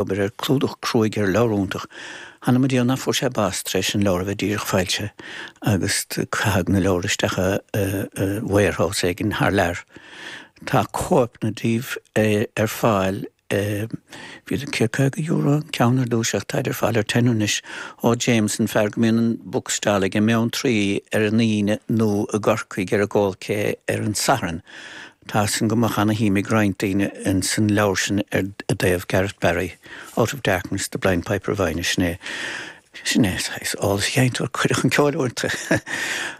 obair ar chlúdach cruaidh ar leabhar iontach. Th'anam Dia ná fuair sé bás tar éis an leabhar a bheith díreach foilsithe agus caitheadh na leabhair isteach i warehouse éigin thar lear. Tá cóipeanna díobh ar fáil i, bhíodar ag €150 an ceann ar dtúis ach táid ar fáil ar tenner anois, ó James an fear go mbíonn an bookstall aige i mBeanntraí ar an Aoine nó i gCorcaigh ar an gCoal Quay ar an Satharn. Tá sin go maith agus luaimid roinnt daoine ins an leabhar sin i dtaobh Garrett Barry, Out of Darkness, The Blind Piper of Inagh, sin é, sin é, saghas eolas sheinnteoir cuireadh chun ceoil uaireanta.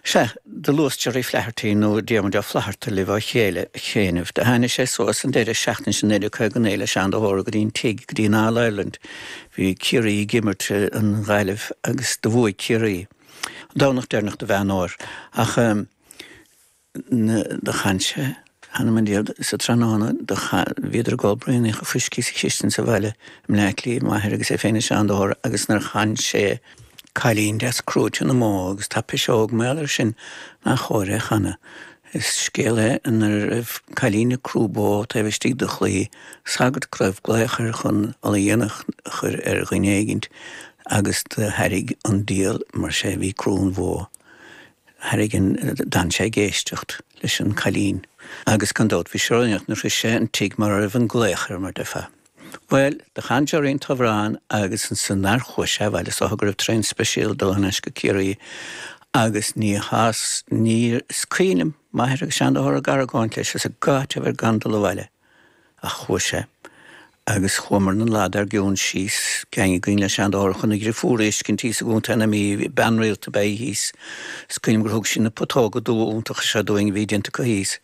Sea, do luas Gerry Flaherty nó Diarmuid Ó Flatharta libh ó chianaibh. Do tháinig sé suas an deireadh seachtaine sin i 1959 le Seán de hÓra go dtí an tigh, go dtí an All Ireland. Bhí Ciarraí ag imirt in aghaidh na Gaillimhe agus do bhuaigh Ciarraí. An Domhnach deireanach de Mheán Fómhair. Ach. do chan sé, th'anam Dia, sa tráthnóna do chan, bhíodar ag ól braonaíocha fuiscí sa chistin sa bhaile i mBleá Cliath, m'athair agus é féin is Seán de hÓra agus nuair chan sé, cailín deas crúite na mbó agus tá piseóg mar leis sin nach cóir é chanadh, is scéal é ina raibh cailín ag crú bó taobh istigh de chlaí sagairt go raibh glaoch air chun ola dhéanach a chur ar dhuine éigint agus do tharraig an diabhal mar sé bhí ag crú an bhó tharraig an, d'fhan sé ag éisteacht leis an gcailín agus gan dabht bhí sé ródhéanach nuair a shrois sé an tigh mar a raibh an glaoch ar mar déarfá. Bhuel, do chan Jerry an t-amhrán agus ansan nár chuaigh sé abhaile siúd is go raibh traein speisial ag dul thar n-ais go Ciarraí agus ní ghéill sé, níor, is cuimhin liom m'athair agus Seán de hÓra ag argóint leis is ag tathant air gan dul abhaile. Ach chuaigh sé. Agus chuamar lá arna mháireach síos, geaing againn le Seán de hÓra chun a dheirfiúr a fheiscint thíos i gContae na Mí. bean rialta ab ea í thíos. Is cuimhin liom gur thug sí na putóga dubha iontacha seo dúinn a bhí déanta acu thíos.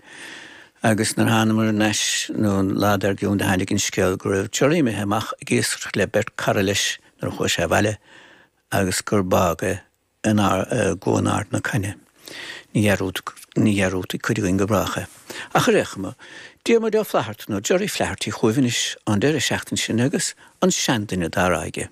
Agus nuair a thánamar aneas lá ina dhiaidh sin do tháinig an scéal go raibh Jerry imithe amach ag iascaireacht le beirt cara leis nuair a chuaigh sé abhaile agus gur bádh é. i gCuan Ard na Caithne. Ní dhearúdfaidh cuid againn go brách é. Ach ar aon chuma, Diarmuid Ó Flatharta, nó Gerry Flaherty, chugaibh anois an deireadh seachtaine sin agus an seanduine á rá aige.